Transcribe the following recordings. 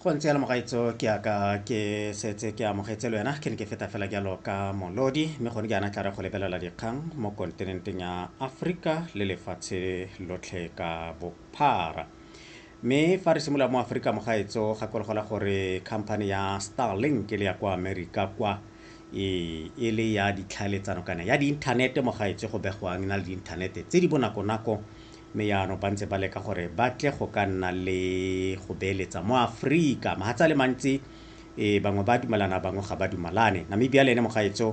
go ntse yana mogaitso ke aka ke setse ke amogetse le wena ke ne ke feta fela jalo ka molodi mme gone jaana tla re go lebelela dikgang mo kontinenteng ya aforika le lefatshe lotlhe ka bophara mme fa re simolola mo aforika mogaetso gakologelwa gore company ya starlink ke le ya kwa amerika kwa e, e le ya ditlhaeletsano kana ya diinthanete mogaetso go begwang e na le diinthanete tse di bonakonako mme jaanong ba ntse ba leka gore ba tle go ka nna le go beeletsa mo Afrika. Mahatsa le mantsi e bangwe ba dumelana bangwe ga ba dumalane. Namibia le ene mogaetso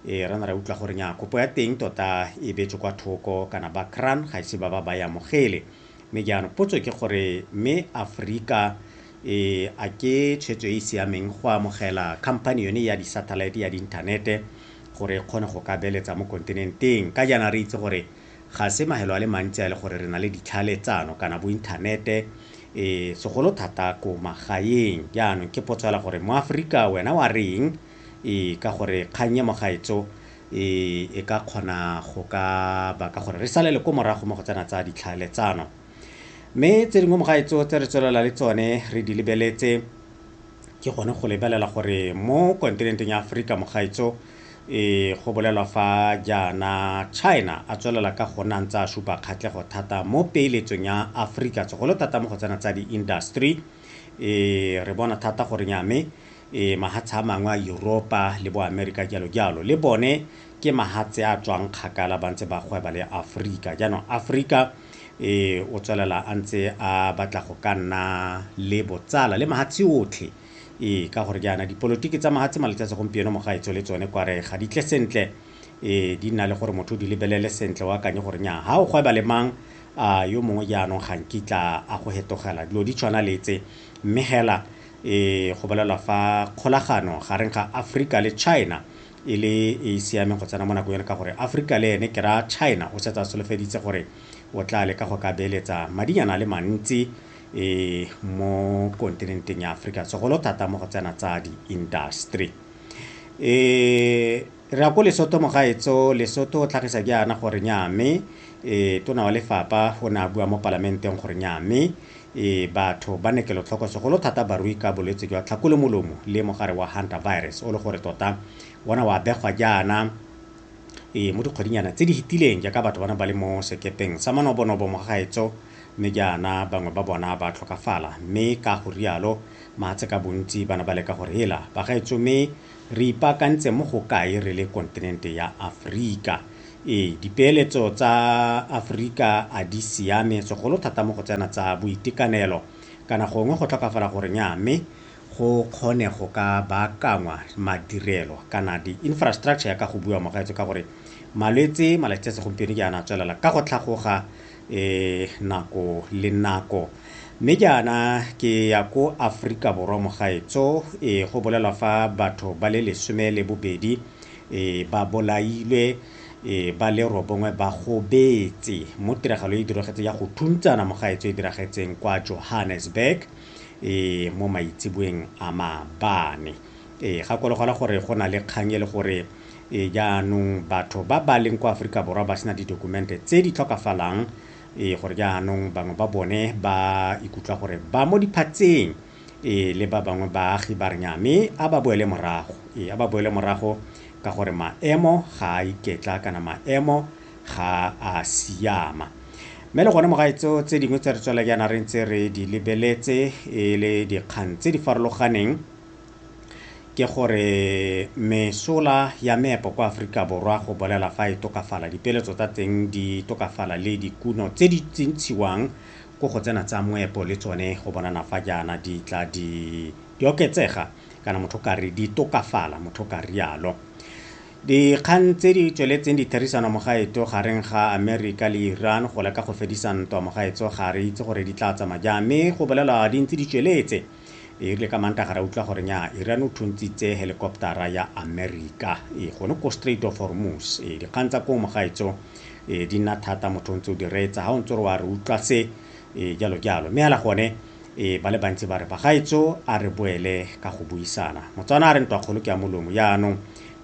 e re na ra utlwa gore nya kopo ya teng tota e betswe kwa thoko kana ba cran ga ise ba ba ba ya mogele. Mme jaanong potso ke gore mme Afrika e a ke tshwetso e e siameng go amogela company yone ya di-satellite ya di-inthanete gore e kgone go ka beeletsa mo kontinenteng. Ka jaana re itse gore Ga se mahelo a le mantsi a e le gore re na le ditlhale tsano kana bo inthanete, segolo thata ko magaeng. Jaanong ke potso fela gore mo Aforika wena wa reng ka gore kgang e mo gaetsho e ka kgona go ka baka gore re salele ko morago mo go tsena tsa ditlhale tsano. Mme tse dingwe mo gaetsho tse re tswelela le tsone re di lebeletse, ke gone go lebelela gore mo kontinenteng ya Aforika mogaetso e go bolelwa fa jaana China a tswelela ka go nna ntse a supa kgatlhego thata mo peeletsong ya Aforika segolo thata mo go tsena tsa di-industry e re bona thata gore nyame e mahatsha a mangwe a Europa le bo America jalo jalo le bone ke mahatshe a tswang kgakala ba ntse ba gweba le Aforika. Jaanong Aforika o tswelela a ntse a batla go ka nna le botsala le mahatshe otlhe ee ka gore jaana dipolotiki tsa mahatshe malatsi a segompieno mogaetso le tsone kware ga di tle sentle ee di nna le gore motho di lebelele sentle o akanye gore nya ga o gweba le mang a yo mongwe jaanong ga nkitla a go hetogela dilo di tshwana le tse mme hela e go bolelwa fa kgolagano gareng ga Afrika le China e le e e siameng go tsena mo nakong eno ka gore Aforika le ene ke ra China o setse a solofeditse gore o tla leka go ka beeletsa madinyana a le mantsi um mo kontinenteng ya Aforika segolo thata mo go tsena tsa di-industry. um re ya ko Lesotho mogaetso Lesotho o tlhagisa ke yana gore nya mme um tona wa lefapha o ne a bua mo palamenteng gore nya mme Ee, batho ba ne kelotlhoko segolo thata barui ka bolwetse jwa tlhakolemolomo le mogare wa Hunter virus o le gore tota ona wa begwa jaana ee mo dikgwedinyana tse di hitileng jaaka batho bana ba le mo sekepeng sa manobonobo mo gaetso mme jaana bangwe ba bona ba tlhokafala mme ka go rialo mahatshe ka bontsi bana ba leka gore hela bagaetso mme re ipaakantse mo go kae re le kontinente ya Aforika Ee, dipeeletso tsa Aforika a di siame, segolo thata mo go tsena tsa boitekanelo. Kana gongwe go tlhokafala gore nyaa mme go kgone go ka baakangwa madirelo kana di-infrastructure ya ka go bua mogaetso ka gore malwetse malatsi a segompieno ke ana a tswelela ka go tlhagoga um nako le nako. Mme ke ana ke ya ko Aforika Borwa mogaetso, ee go bolelwa fa batho ba le lesome le bobedi e ba bolailwe e ba le robongwe ba gobetse mo tiragalo e diragetse ya go thuntsana mo gaetso e diragetseng kwa Johannesburg e mo maitseboeng a mabane e gakologelwa gore go na le kgang e le gore e jaanong batho ba ba leng kwa aforika borwa ba sena didokumente tse di tlhokafalang e gore jaanong bangwe ba bone ba ikutlwa gore ba mo diphatseng Ee, le ba bangwe baagi ba re nnyaa, mme a ba boele morago. Ee, a ba boele morago ka gore maemo ga a iketla kana maemo ga a siama. Mme le gone mo gaetso tse dingwe tse re tswela jaana re ntse re di lebeletse e le dikgang tse di farologaneng ke gore mesola ya meepo kwa Aforika Borwa go bolela fa e tokafala, dipeeletso tsa teng di tokafala le dikuno tse di ntshiwang ko go tsena tsa moepo le tsone go bonana fa jaana di tla di di oketsega kana motho ka re di tokafala motho ka rialo dikgang tse di tsweletseng ditherisano mogaetso gareng ga amerika le iran go leka go fedisa ntwa mogaetso ga re itse gore di tla tsamaya jang mme go bolela di ntse di tsweletse E rile ka Mantaga ra utlwa gore nyaa Iran o thuntshitse helikoptara ya Amerika e gone ko Strait of Hormuz. E dikgang tsa koo mogaetso e di nna thata motho o ntse o di reetsa ga o ntse o re wa re utlwa se e jalo jalo mme hela gone e ba le bantsi ba re bagaetso a re boele ka go buisana motswana a re ntwa kgolo ke ya molomo jaanong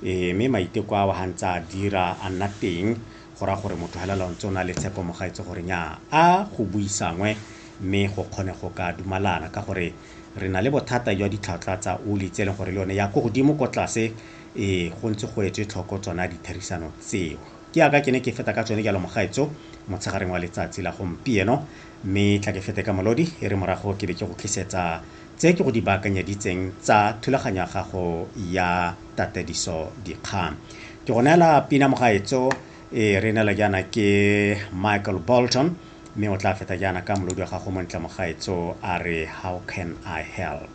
e mme maiteko a wa ga ntse a dira a nna teng go raya gore motho helela o ntse o na le tshepo mogaetso gore nyaa a go buisangwe mme go kgone go ka dumalana ka gore re na le bothata jwa ditlhwatlhwa tsa oli tse e leng gore le yone ya ko godimo ko tlase e go ntse go etswe tlhoko tsona ditherisano tseo ke yaka ke ne ke feta ka tsone jalo mogaetso motshegareng wa letsatsi la gompieno mme tla ke fete ka molodi e re morago ke be ke go tlisetsa tse ke go di baakanyeditseng tsa thulaganyo ya gago ya tatediso dikgang ke go neela pina mogaetso e re neela jaana ke michael bolton Mme o tla feta jaana ka molodi wa gago o montle, mogaetsoo, a re, How can I help?